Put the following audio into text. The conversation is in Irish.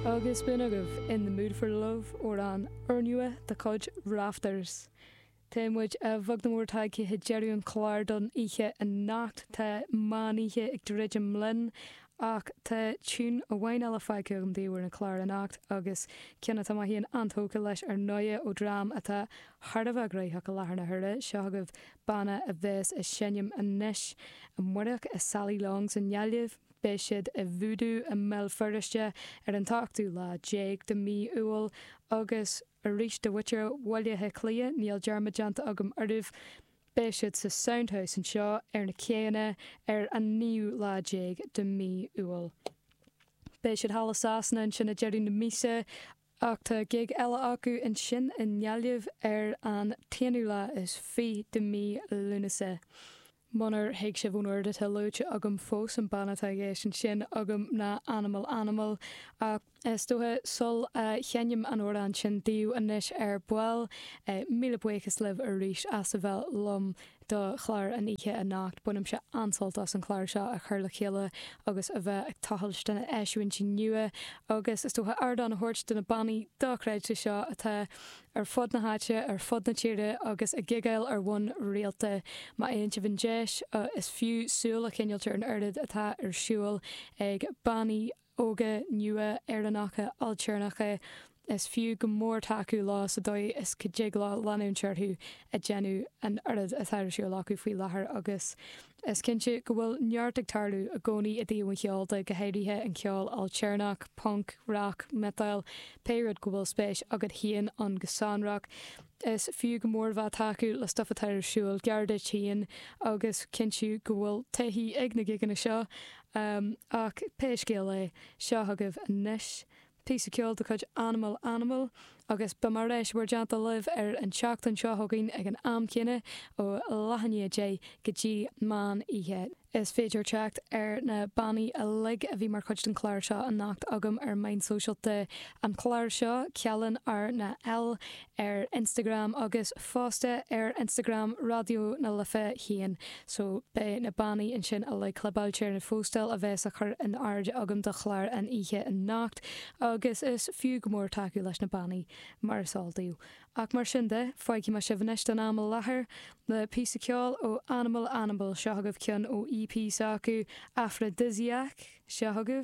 Agus b'in agaibh In the Mood for Love, amhrán úrnua de chuid Rafters. Tá muid bheag nó mór tagtha chuig deireadh an chláir don oíche anocht. Tá meán oíche ag druidim linn ach tá tune amháin eile fágtha agam daoibh ar an chlár anocht agus ceann atá mé féin an-tógtha leis ar ndóighe ó dream atá thar a bheith gnaitheach i láthair na huaire. Seo agaibh banna a bheas ag seinm anois amárach i Sally Longs i nGaillimh. Beidh siad i Voodoo i mBéal Feirste ar an t-ochtú lá déag de mhí Iúil agus arís do mhuintir Bhaile Átha Cliath, níl dearmad déanta agam oraibh, beidh siad sa Sound House anseo ar na céanna ar an naoú lá déag de mhí Iúil. Beidh siad thall i Sasana ansin ag deireadh na míosa. ach tá gig eile acu ansin i nGaillimh ar an t-aonú lá is fiche de mhí Lúnasa, munar thuig sibh ón oiread atá luaite agam fós, an banna atá i gceist ansin agam ná Animal Animal, ach is dócha sul a sheinnim an amhrán sin daoibh anois ar ball, míle buíochas libh arís as a bheith liom do chlár an oíche anocht. Bainimse an-sult as an chlár seo a chur le chéile agus a bheith ag tochailt do na eisiúintí nua agus is dócha ardán a thabhairt do na bannaí dochreidte seo atá ar fud na háite, ar fud na tíre agus ag gigeáil ar bhonn rialta. Má fhaigheann sibh an deis, is fiú súil a choinneáilt ar an oiread atá ar siúl ag bannaí, óga nua Éireannacha ailtéarnacha, is fiú go mór tacú leo sa dóigh is go dtig leo leanúint orthu ag déanamh an oiread atá ar siúl acu faoi láthair agus is cinnte go bhfuil neart ag tarlú i gcónaí i dtaobh an cheoil de, go háirithe an ceol ailtéarnach, punc, rac, miotail, pé rud go bhfuil spéis agat féin ann go sonrach. Is fiú go mór bheith ag tacú le stuif atá ar siúl gar duit féin agus cinntiú go bhfuil taithí ag na gigeanna seo, Um, ach pé scéal é, seo agaibh anois píosa ceoil de chuid Animal Animal, agus beidh mé ar ais in bhur dteannta libh ar an tseachtain seo chugainn ag an am céanna ó leath i ndiaidh 10 go dtí meán oíche. Is féidir teacht ar na bannaí uilig a bhí mar chuid den chlár seo anocht agam ar meáin sóisialta an chláir seo, cealann RnaL ar Instagram agus fosta ar Instagram Raidió na Life féin so beidh na bannaí ansin uilig clibeáilte ar an phóstáil a bheas á chur in airde agam do chlár an oíche anocht agus is fiú go mór tacú leis na bannaí mar is eol daoibh. Ach mar sin de, fágfaidh mé sibh anois don am i láthair le píosa ceoil ó Animal Animal, seo agaibh ceann ó EP s'acu, Aphrodisiac, seo chugaibh.